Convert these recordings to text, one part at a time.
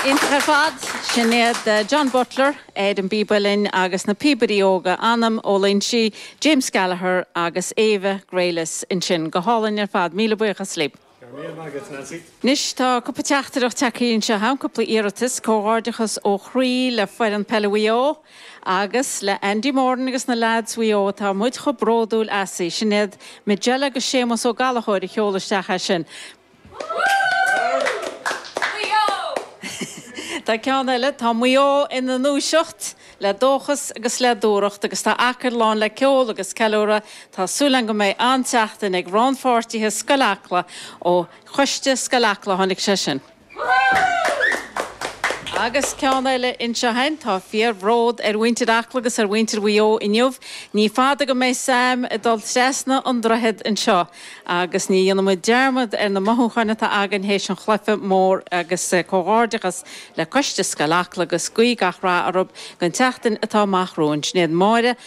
Iontach ar fad. Sin iad John Butler, ar an bpíb uilleann agus na píobairí óga Anam Ó Loingsigh, James Gallagher agus Ava Grealis ansin. Go hálainn ar fad. Míle buíochas libh. Go raibh míle maith agat, Nancy. Anois tá cúpla teachtaireacht tagthaí anseo a'm, cúpla iarratas comhghairdeachas ó chroí le foireann peile Mhaigh Eo. Agus le Andy Moran agus na leaids Mhaigh Eo atá muid chomh bródúil asaibh. Sin iad Majella agus Séamus Ó Gallachóir a sheol isteach é sin. Maigh Eo! Tá ceann eile, Tá Maigh Eo ina ndúiseacht! Le dóchas agus le dúthracht agus tá Acaill lán le ceol agus ceiliúradh, tá súil agam go mbeidh an-tseachtain ag rannpháirtithe Scoil Acla ó Choiste Scoil Acla tháinig sé sin. Agus ceann eile anseo a'm. Tá fíorbhród ar mhuintir Acla agus ar mhuintir Mhaigh Eo inniu. Ní fada go mbeidh Sam ag dul trasna an droichead anseo agus ní dhéanfaidh muid dearmad ar na mothúcháin atá againn théis an chluife mór agus comhghairdeachas le coiste Scoil Acla agus guí gach rath orthu don tseachtain atá amach romhainn. Sin iad Máire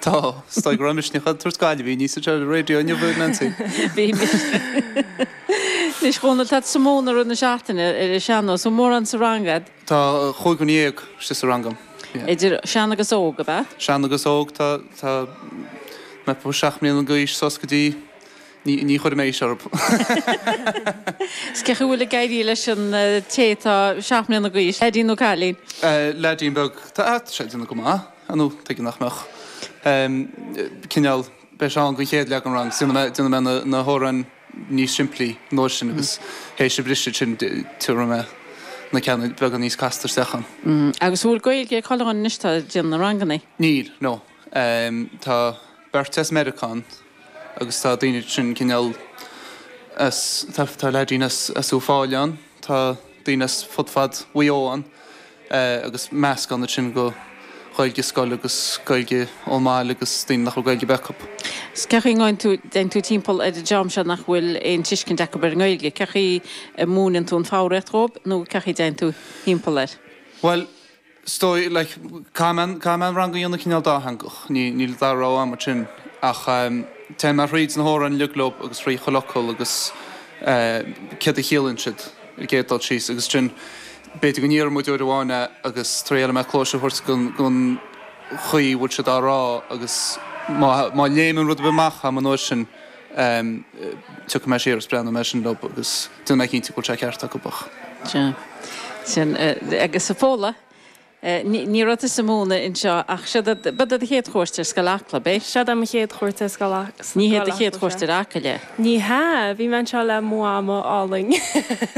Tá. Is dóigh go raibh misneach ag tabhairt Gaillimh aoinní sa Church Radio inniu a Nancy. Bhí misneach. Anois Dhónall tá tusa ag múineadh ar na seachtaine ar an sean-nós. Bhfuil mórán sa rang a'd? Tá chúig dhuine dhéag istigh sa rang a'm. Idir sean agus óg ab ea? Sean agus óg. Tá tá mé ó seacht mbliana d'aois suas go dtí ní ní chuirfidh mé aois orthu. Is cén chaoi a bhfuil ag éirí leis an té atá seacht mbliana d'aois? Leaidín nó cailín? Eh leaidín beag. Tá ah sé ag déanamh go maith. nó tuige nach mbeadh? cineál briseadh ann don chéad leath den rang. Déanann mé na hamhráin níos simplí an uair sin agus théis an bhriseadh sin tabharfaidh mé na ceanna beagán níos casta isteach ann. Agus an bhfuil Gaeilge ag chuile dhuine anois atá ag déanamh na ranganna? Níl, nó tá beirt as Meiriceá ann agus tá daoine ansin cineál as, tá leaidín as Uíbh Fhailí ann, tá daoine as fud fad Mhaigh Eo ann agus meascán ansin de Ghaeilge scoile agus Gaeilge ón mbaile agus daoine nach raibh Gaeilge ar bith acu. Cé chaoi a dtéann tú timpeall ar an dream seo nach bhfuil aon tuiscint acu ar an nGaeilge? Cé chaoi a múineann tú an foghraíocht dhóibh nó cé chaoi a dtéann tú timpeall air? Bhuel, is dóigh like Caithfidh mé caithfidh mé an rang a dhéanamh cineál dátheangach, ní níl an dá rogha agam mar sin ach téann mé thríd na hamhráin uilig leo agus thríd chuile fhocal agus céard a chiallaíonn siad ar an gcéad dul síos agus ansin b'fhéidir go ndéarfaidh muid uair amháin é agus traíálfaidh mé cluais a thabhairt don don chaoi a bhfuil siad á rá agus má má léimeann rud ar bith amach a'm an uair sin em tiocfaidh mé siar agus breathnóidh mé ar sin leo agus déanfaidh mé cinnte go bhfuil sé ceart acu ach. Sea. Sin. Agus a Phóla, ní raibh tusa ag múineadh anseo ach seo do, b'é do chéad chuairt ar Scoil Acla, b'é? Seo do mo chéad chuairt ar Scoil Acla, sea. Ní hé do chéad chuairt ar Acaill é? Ní hea, bhí mé anseo le mo mhama álainn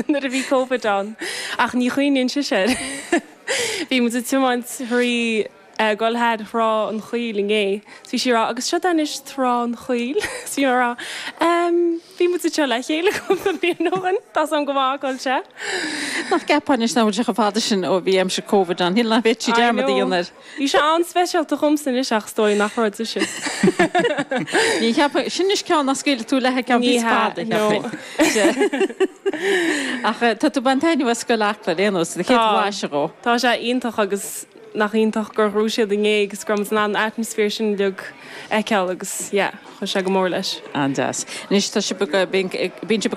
nuair a bhí Covid ann ach ní chuimhníonn sise air. Bhí muid ag tiomáint thríd. ag dul thar Thrá an Chaoil inné. So bhí sí ag rá, agus seo anois Trá an Chaoil. So bhí mé ag rá, em, bhí muid anseo le chéile cúpla bliain ó shin, tá sin go maith, Coillte. Nach gceapfá anois nach bhfuil sé chomh fada sin ó bhí aimsir Covid ann, shíl nach bhféadfaí I dearmad a know. dhéanamh air. Bhí sé an-speisialta dhomsa anois ach is dóigh nach raibh di sin. Ní cheapfainn, sin anois ceann nach scaoilfidh tú léi go ceann Ní níos hea, fada, no. cheapfainn. Ach tá tú ag baint taitneamh as Scoil Acla ar aon nós, do Tá, chéad bhlaiseadh dhó. tá sé iontach agus. nach iontach gur dhruid siad i ngéag agus go raibh muid in ann an atmaisféar sin uilig a fheiceáil agus yeah, chuir sé go mór leis. An deas. Anois tá sibh ag, bíonn sibh ag.